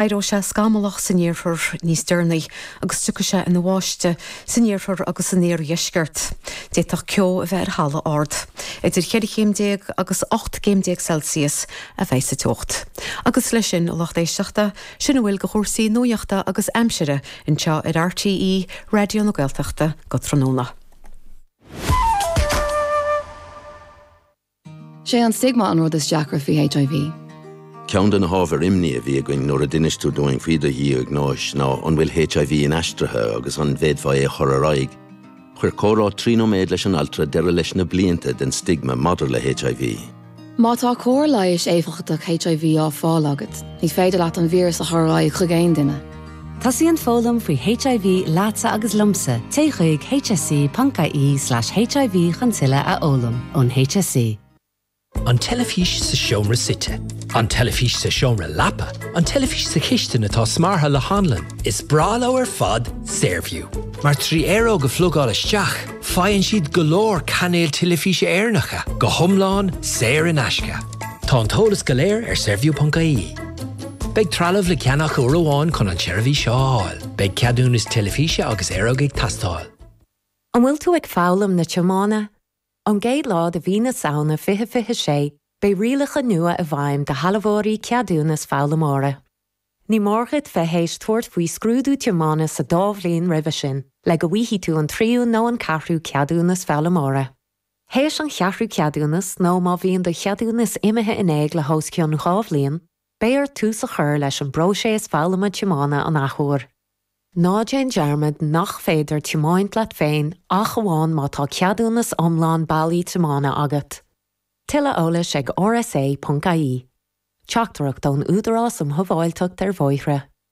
Éireoidh sé scamallach san iarthar níos deireanaí agus tiocfaidh sé ina bháisteach san iarthar agus san iardheisceart. D'fhéadfadh ceo a bheith ar thalamh ard. Idir cheithre chéim déag agus ocht gcéim déag Celsius a bheidh sa teocht. Agus leis sin, a lucht éisteachta, sin a bhfuil de chúrsaí nuaíochta agus aimsire anseo ar RTÉ Raidió na Gaeltachta go tráthnóna. 'Sé an stigma an rud is deacra faoi HIV. Ceann de na hábhair imní a bhí againn nuair a d'inis tú dúinn faoi do dhiagnóis ná an bhfuil HIV inaistrithe agus an bhféadfá é a chur ar aghaidh. Chuir comhrá trí nóiméad leis an altra deireadh leis na blianta den stigma maidir le HIV. Má tá cóir leighis éifeachtach HIV á fáil agat, ní féidir leat an víreas a chur ar aghaidh chuig aon duine. Tosaíonn foghlaim faoi HIV leatsa agus liomsa, téigh chuig hse.ie slash HIV chun tuilleadh a fhoghlaim. Ón HSE. An teilifís sa seomra suite. An teilifís sa seomra leapa. An teilifís sa chistin atá smeartha le hanlann. Is breá leo ar fad Saorview, mar trí aeróg a phlugáil isteach, faigheann siad go leor cainéil teilifíse Éireannacha, go hiomlán saor in aisce. Tá an t-eolas go léir ar saorview.ie. Beidh trealamh le ceannach uair amháin chun an tseirbhís seo a fháil. Beidh ceadúnas teilifíse agus aeróg ag teastáil. An bhfuil tú ag foghlaim na tiomána? Ón gcéad lá de mhí na Samhna 2026, beidh rialacha nua i bhfeidhm do shealbhóirí ceadúnas foghlaimeora. Ní mór dhuit bheith théis tabhairt faoi scrúdú tiomána sa dá bhliain roimhe sin le go bhfaighidh tú an tríú nó an ceathrú ceadúnas foghlaimeora. Théis an cheathrú ceadúnas nó má bhíonn do cheadúnas imithe in éag le hos cionn dhá bhliain, Beidh ort tús a chur leis an bpróiseas foghlama tiomána an athuair. Ná déan dearmad nach féidir tiomáint leat féin ach amháin má tá ceadúnas iomlán bailí tiomána agat. Tuilleadh eolais ag rsa.ie. Teachtaireacht ón Údarás um Shábháilteacht ar Bhóithre.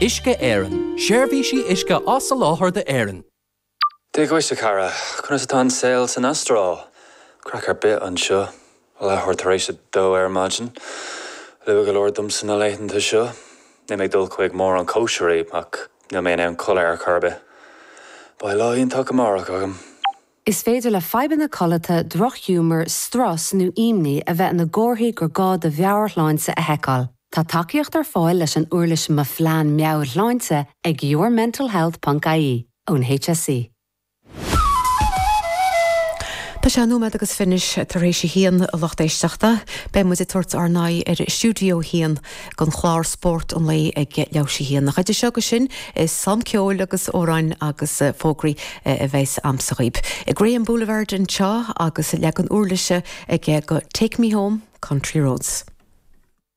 Uisce Éireann, Seirbhísí uisce á soláthar d'Éirinn. Dia dhuit, a chara. Conas atá an saol san Astráil? Craic ar bith anseo. Leathuair tar éis a dó ar maidin. Luath go leor domsa na laethanta seo. Níl mé ag dul chuig mórán cóisirí, ach níl mé in ann codladh ar chor ar bith. Beidh lá iontach amárach agam. Is féidir le fadhbanna codlata, drochghiúmar, strus nó imní a bheith ina gcomharthaí gur gá do mheabhairshláinte a sheiceáil. Tá tacaíocht ar fáil leis an uirlis Mo Phlean Meabhairshláinte ag yourmentalhealth ponc ie ón HSE. Tá sé nóiméad agus fiche anois tar éis a haon, a lucht éisteachta. Beidh muid ag tabhairt ár n-aghaidh ar Stiúideo 1 don chlár Spórt an Lae ag leathuair théis a haon ach idir seo go sin, is slám ceoil agus amhráin agus fógraí a bheas agamsa dhaoibh. I Graham Boulevard anseo agus leagan úirlise aige de Take Me Home, Country Roads.